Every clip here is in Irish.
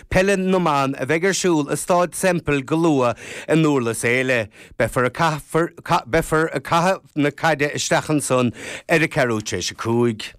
Peile na mBan a bheidh ar siúl i Stáid Semple go luath i nDúrlas Éile. Beifear ag caitheamh na caide isteach ansan ar a ceathrú t'réis a cúig.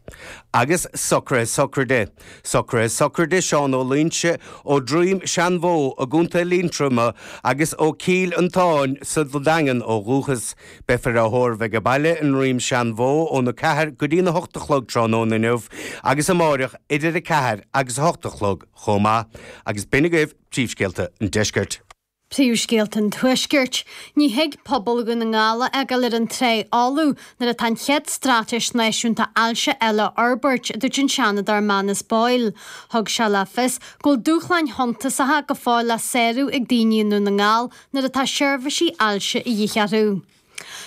Agus socruithe sochraide. Socruithe sochraide Seán Ó Luínse ó Dhroim Seanbhó i gContae Liatroma agus ó Chill Fhiontain sa Daingean ó dhúchas. Beifear á thórramh aige baile i nDroim Seanbhó óna 4 go dtína 8 a chlog tráthnóna inniu agus amáireach idir 4 agus 8 a chlog chomh maith agus b'in agaibh Príomhscéalta an Deiscirt. Príomhscéalta an Tuaiscirt, Ní thig pobal Dhún na nGall a fhágáil ar an trá fholamh nuair atá an chéad straitéis náisiúnta ailse eile á fhorbairt, a dúirt an Seanadóir Manus Boyle. Thug sé le fios go bhfuil dúshláin shuntasacha go fóill le sárú ag daoine i nDún na nGall nuair atá seirbhísí ailse a dhíth orthu.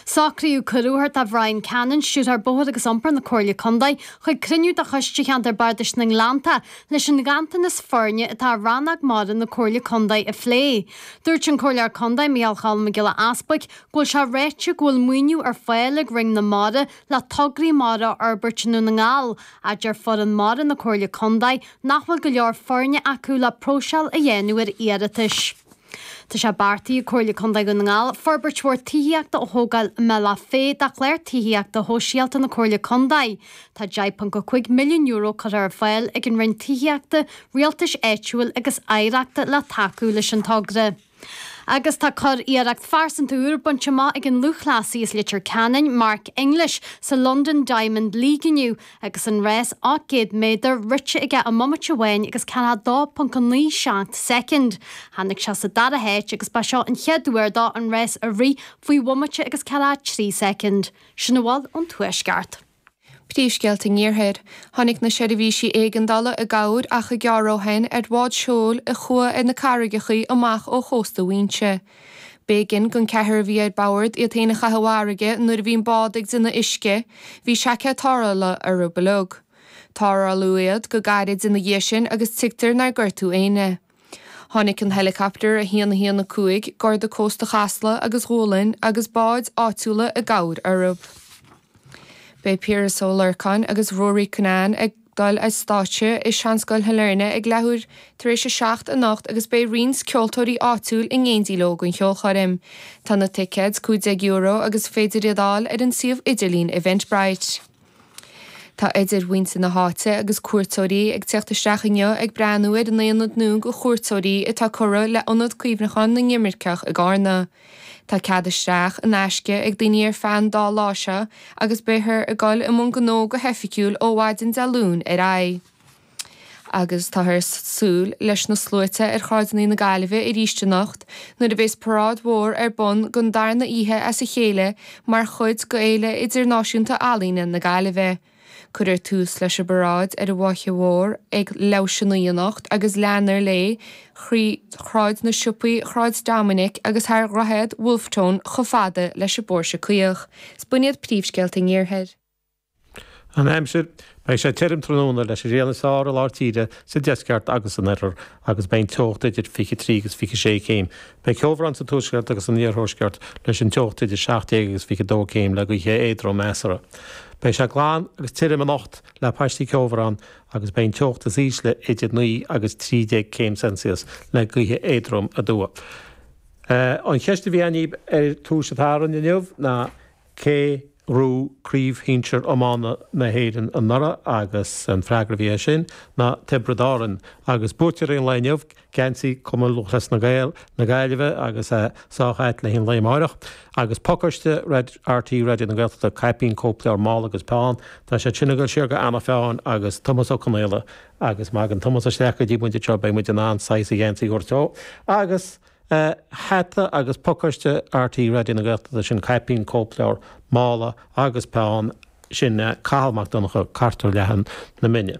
Socraíodh cuireadh a thabhairt do Bhryan Cannon, Stiúrthóir Bóthair agus Iompair na Comhairle Contae, chuig cruinniú de Choiste Cheantar Bardais na nGleannta leis an ghanntanas foirne atá ar rannóg mara na Comhairle Contae a phlé. Dúirt an Comhairleoir Contae, Micheál Choilm Mac Giolla Easbuig, go bhfuil sé ráite go bhfuil maoiniú ar fáil ag Roinn na Mara le tograí mara a fhorbairt i nDún na nGall, ach deir foireann mara na Comhairle Contae nach bhfuil go leor foirne acu le próiseáil a dhéanamh ar iarratais. Tá sé beartaithe ag Comhairle Contae Dhún na nGall forbairt mhór tithíochta a thógáil i mBealach Féich de Chlár Tithíochta Shóisialta na Comhairle Contae. Tá €10.5 milliún curtha ar fáil ag an Roinn Tithíochta, Rialtais Áitiúil agus Oidhreachta le tacú leis an togra agus tá curiarracht phearsanta úr bainte amach ag an lúthchleasaí as Leitir Ceanainn, Mark English, sa London Diamond League inniu agus an rás 800 méadar rite aige i mbomaite amháin agus 42.97 soicind. Tháinig sé sa dara háit agus ba seo an chéad uair dó an rás a rith faoi bhomaite agus 43 soicind. Sin a bhfuil ón Tuaisceart. Príomhscéalta an Iarthair. Tháinig na seirbhísí éigeandála i gcabhair achar gearr ó shin ar bhád seoil a chuaigh ar na carraigeacha amach ó chósta Mhaínse. B'éigin gon cheathrar a bhí ar bord iad fhéin a chaitheamh i bhfarraige nuair a bhí an bád ag déanamh uisce, bhí seaicéad tarrthála orthu uilig. Tarrtháladh iad go gairid ina dhiaidh sin agus tuigtear nár gortaíodh éinne. Tháinig an helicopter 1 1 5 Garda Cósta Chasla agus Dhúlainn agus báid áitiúla i gcabhair orthu. Beidh Piaras Ó Lorcáin agus Ruairí Cunnane ag. Dul ar stáitse i Seanscoil Shailearna ag leathuair tar éis a seacht anocht agus beidh roinnt ceoltóirí áitiúil in éindí leo don cheolchoirm. Tá na ticéid €15 agus is féidir iad a fháil ar an suíomh idirlín Eventbrite. Tá idir mhuintir na háite agus cuairteoirí ag tíocht isteach inniu ag breathnú ar an ionad nua do chuairteoirí atá curtha le Ionad Cuimhneacháin na nImirceach i gCarna. Tá cead isteach, in aisce, ag daoine ar feadh an dá lá seo agus beifear ag dul i mbun gnó go hoifigiúil ó mhaidin Dé Luain ar aghaidh. Agus táthar ag súil leis na sluaite ar shráideanna na Gaillimhe arís anocht nuair a bheas paráid mhór ar bun don darna oíche as a chéile mar chuid d'Fhéile Idirnáisiúnta Ealaíne na Gaillimhe. Cuirfear tús leis an bparáid ar an bhFaiche Mhór ag leathuair tar éis a naoi anocht agus leanfar léi trí Shráid na Siopaí, Shráid Dominic agus thar Dhroichead Wolfe Tone chomh fada leis an bPóirse Caoch. Is b'in iad príomhscéalta an Iarthair. An aimsir, Beidh sé tirim tráthnóna leis an ghrian is fearr i lár tíre, sa deisceart agus san oirthear, agus beidh an teocht idir 23 agus 26 céim. Beidh ceobhrán sa tuaisceart agus san iarthuaisceart leis an teocht idir 17 agus 22 céim le gaoithe éadroma soir. Beidh sé glan agus tirim anocht le paistí ceobhráin agus beidh an teocht is ísle idir 9 agus 13 céim Celsius le gaoithe éadroma aduaidh. An cheist a bhí againn ar Spórt an tSathairn inniu ná. Cé a bhuaigh craobh shinsir iomána na hÉireann anuraidh agus an freagra a bhí air sin ná Tiobraid Árann agus buaiteoirí an lae inniu, geansaí Chumann Lúthchleas Gael na Gaillimhe agus é sábháilte le haghaidh an lae amárach. Agus pacáiste RTÉ Raidió na Gaeltachta, caipín, cóipleabhar, mála agus peann, tá siad sin ag dul siar go Anna Pheáin agus Tomás Ó Conaola agus má thagann Tomás isteach go dtí muid beidh muid in ann saghas a gheansaí a thabhairt dó agus Hata agus pacáiste RTÉ Raidió na Gaeltachta, sin caipín, cóipleabhar, mála agus peann, sin Cathal Mac Donncha, Gort Leath na Mine.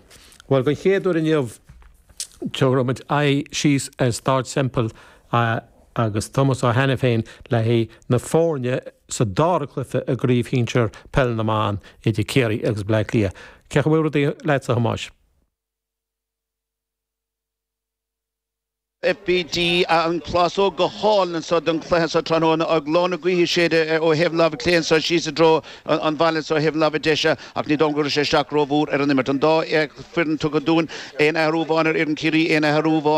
Bhuel, den chéad uair inniu, tabharfaidh muid aghaidh síos ar Stáid Semple agus Tomás Ó hAiniféin le haghaidh na foirne sa dara cluiche i gcraobh shinsir Peil na mBan idir Ciarraí agus Bleá Cliath. Cén chaoi a bhfuil rudaí leatsa, a Thomáis? FBD, Tá an phlásóg go hálainn anseo don chluiche seo tráthnóna, leoithne gaoithe ag séideadh ó thaobh an láimhe clé anseo síos i dtreo an bhaile anseo ó thaobh an láimhe deise, ach ní dóigh liom go gcuirfidh sé isteach rómhór ar an imirt. An dá fhoireann tugtha dúinn, aon athrú amháin ar fhoireann Chiarraí, aon athrú amháin